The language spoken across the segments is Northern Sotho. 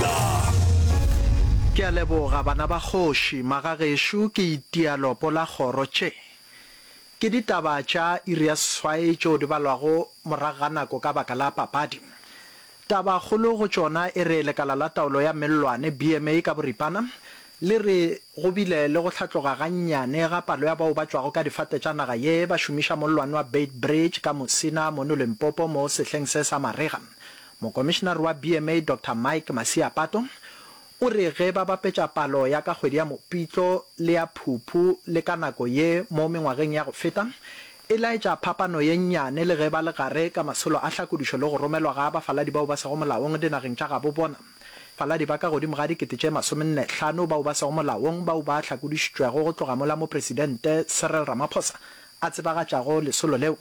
Afrika. Ke a leboga bana ba kgoši, magagešo ke itia lopo la kgoro tše ke ditaba tša iri ya seswai tšeo di balwago morago ga nako ka baka la papadi. Taba kgolo go tšona e re lekala la taolo ya mellwane, BMA, ka boripana le re go bile le go hlatloga ga nnyane ga palo ya bao ba tšwago ka difate tša naga ye ba šomiša mollwane wa Beitbridge ka Musina mono Limpopo mo sehleng se sa marega Mokomišenare wa BMA Doctor Mike Masiapato o re ge ba bapetša palo ya ka kgwedi ya Mopitlo le ya Phuphu le ka nako ye mo mengwageng ya go feta, e laetša phapano ye nnyane le ge ba le gare ka masolo a hlakodišo le go romelwa ga bafaladi bao ba sego molaong dinageng tša gabo bona. Faladi ba ka godimo ga dikete tše masomenne hlano bao ba sego molaong bao ba hlakodišitšwego go tloga mola Mopresidente Cyril Ramaphosa a tsebagatšago lesolo leo.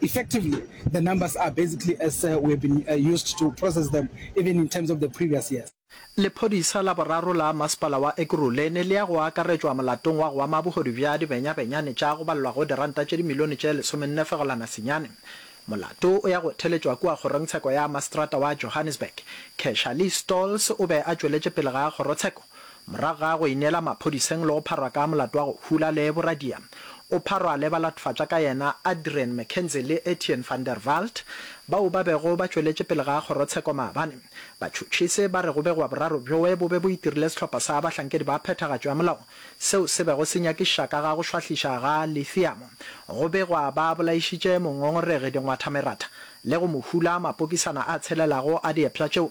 Effectively, the numbers are basically as we have been used to process them even in terms of the previous years. Lephodisa la boraro la Masepala wa Ekurhuleni le ya go akaretšwa molatong wa go ama bohodu bja dibenyabenyane tša go balelwa go diranta tše dimilione tše lesomenne fegolwana senyane. Molato o ya go theletšwa kua kgorongtsheko ya maseterata wa Johannesburg. Keshalee Stolz o be a tšweletše pele ga kgorotsheko Morago ga go ineela maphodiseng le go pharwa ka molato wa go hula le boradia, o pharwa le balathofatša ka yena Adrian McKenzie le Etienne van der Walt, bao ba bego ba tšweletše pele ga kgorotsheko maabane. Batšhotšhisi ba re go begwa boraro bjoe bo be bo itirile sehlopha sa bahlankedi ba phethagatšo ya molao seo se bego se nyakišiša ka ga go šwahliša ga lithiamo. Go begwa ba bolaišitše mongongoregi dingwathameratha le go mo hula mapokisana a tshelelago a diepša tšeo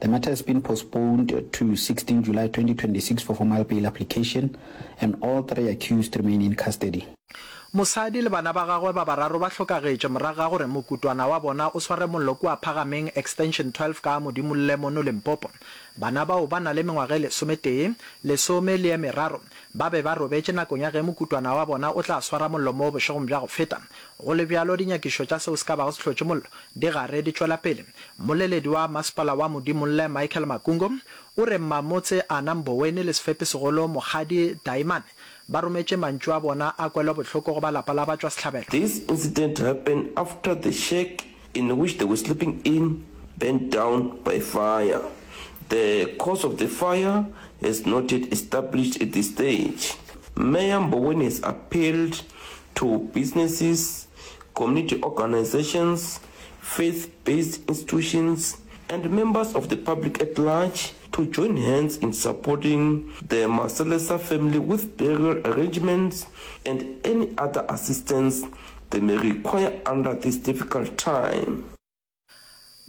The matter has been postponed to 16 July 2026 for formal bail application and all three accused remain in custody. Mosadi le bana ba gagwe ba bararo ba hlokagetše morago ga gore mokutwana wa bona o sware mollo kua Phagameng Extension 12 ka Modimolle mono Limpopo. Bana bao ba na le mengwaga e lesometee, lesome le ye meraro ba be ba robetše nakong ya ge mokutwana wa bona o tla swara mollo moo bošegong bja go feta. Go le bjalo, dinyakišo tša seo se ka bago se hlotše mollo di gare di tšwela pele. Mmoleledi wa Masepala wa Modimolle Michael Makungo o re Mmamotse Anna Mboweni le Sefepisegolo Mokgadi Taimane ba rometše mantšu a bona a kwelobohloko go ba lapa la batšwasehlabelo. This incident happened after the shack in which they were sleeping in burnt down by fire. The cause of the fire has not yet established at this stage. Mayor Mboweni has appealed to businesses, community organisations, faith-based institutions and members of the public at large to join hands in supporting the Maselesa family with burial arrangements and any other assistance they may require under this difficult time.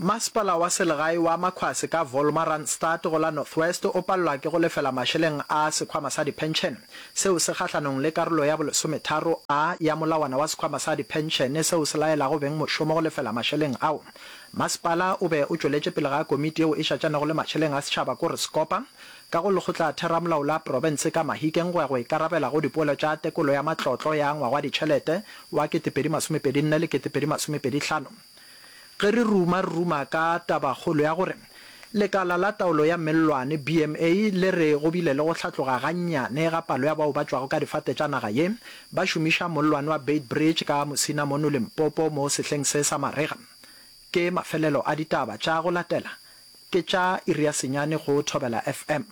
Masepala wa selegae wa Makhwase ka Volmaranstad go la North West o palelwa ke go lefela mašeleng a sekhwama sa diphenšene Seo se gahlanong le karolo ya bolesometharo a ya molawana wa sekhwama sa diphenšene seo se laelago beng mošomo go lefela mašeleng ao. Masepala o be o tšweletše pele ga komiti yeo e šatšanego le mašeleng a setšhaba kore sekopa ka go lekgotlatheramolao la profense ka Mahikeng go ya go ikarabela go dipoelo tša tekolo ya matlotlo ya ngwagwaditšhelete wa kete pedi masomepedi nne le kete pedi masomepedi hlano. Ge re ruma, re ruma ka tabakgolo ya gore Lekala la Taolo ya Mellwane, BMA, le re go bile le go hlatloga gannyane ga palo ya bao ba tšwago ka difate tša naga ye ba šomiša mollwane wa Beitbridge ka Musina mono Limpopo mo sehleng se sa marega. Ke mafelelo a ditaba tša go latela, ke tša iri ya senyane go Thobela FM.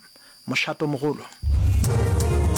Mošatomogolo.